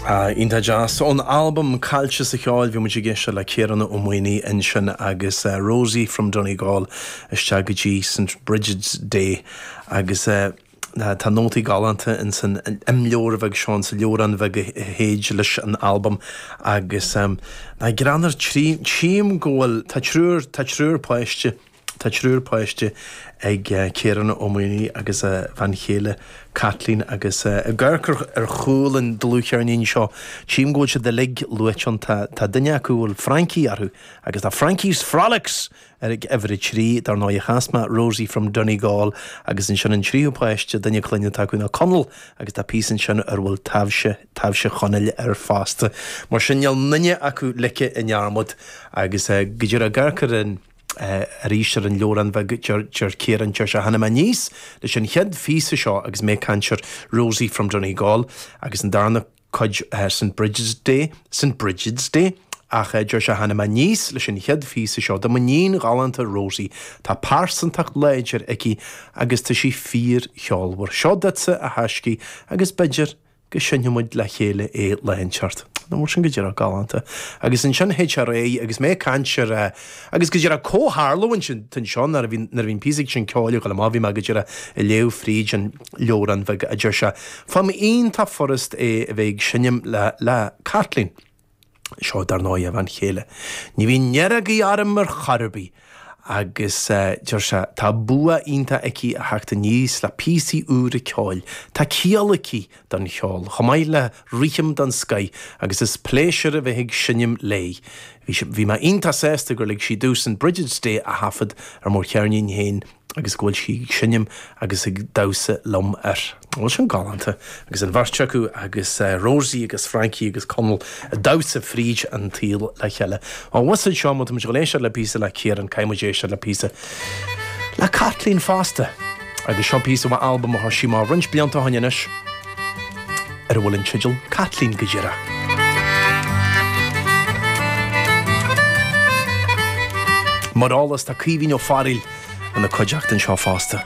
Iontach deas. Ón albam Caillte sa Cheol, bhí muid ag éisteacht le Ciarán Ó Maonaigh ansin agus Rosie from Donegal isteach go dtí St Brigid's Day agus tá nótaí galánta in san imleabhar bheag seo, in sa leabhrán bheag a théid leis an albam agus nach greannmhar, tchím go bhfuil, tá triúr, tá triúr páiste. Tá triúr páiste ag Ciarán Ó Maonaigh agus a bhean chéile Caitlín agus ag amharc ar chúl an dlúthcheirnín seo tchím go bhfuil siad uilig luaite ann. Tá duine acu a bhfuil Frankie orthu agus tá Frankie's Frolics ar uimhir a trí. Dar ndóigh chas mé Rosie From Donegal agus ansin an tríú páiste, duine clainne atá acu ná Conall agus tá píosa ansin ar a bhfuil Taibhse, Taibhse Chonaill air fosta. Mar sin níl aon duine acu ligthe i ndearmad agus go díreach ag amharc ar an. arís ar an leabhrán bheag Deir Ciarán, Deir sé, Tháinig mé aníos leis an chéad phíosa seo agus mé ag caint ar Rosie from Donegal agus an darna cuid ar St Brigid's Day, St Brigid's Day? ach deir sé, Tháinig mé aníos leis an chéad phíosa seo do m'iníon ghalánta Rosie, tá pearsantacht láidir aici agus tá sí fíorcheolmhar. Seo duitse, a thaiscidh, agus b'fhéidir go seinnfidh muid le chéile é lá inteacht. Nach bhfuil sin, go díreach, galánta. Agus ansin théid sé ar aghaidh agus mé ag caint air. Agus, go díreach, comhtharlú atá anseo nuair a bhí, nuair a bhí an píosa sin ceoil ag gabháil amach, bhí mé, go díreach, ag léamh fríd an leabhrán bheag a deir sé, faighim iontach furast é a bheith ag seinm le, le Caitlín. Seo, dar ndóigh, a bhean chéile. Ní bhíonn neirbhís orm ar chor ar bith. Agus deir sé, tá bua iontach aici a theacht aníos le píosaí úra ceoil. Tá ciall aici don cheol, chomh maith le rithim den scoith, agus is pléisiúr a bheith ag seinm léi. Bhí mé iontach sásta gur lig sí domh St Brigid's Day a thaifead ar mo cheirnín féin. agus go bhfuil sí ag seinm agus ag damhsa liom air. Nach bhfuil sin galánta. Agus an bheirt acu, agus Rosie agus Frankie agus Conall, ag damhsa fríd an tsaol le chéile. Á, mhuise, seo, má tá muid ag gabháil a éisteacht le píosa le Ciarán, caithfidh muid éisteacht le píosa le Caitlín fosta! Agus seo píosa ón albam a chuir sí amach roinnt blianta ó shin anois. ar a bhfuil an teideal Caitlín go díreach. Mar eolas, tá Caoimhín Ó Fearghail ina cuideachta anseo fosta.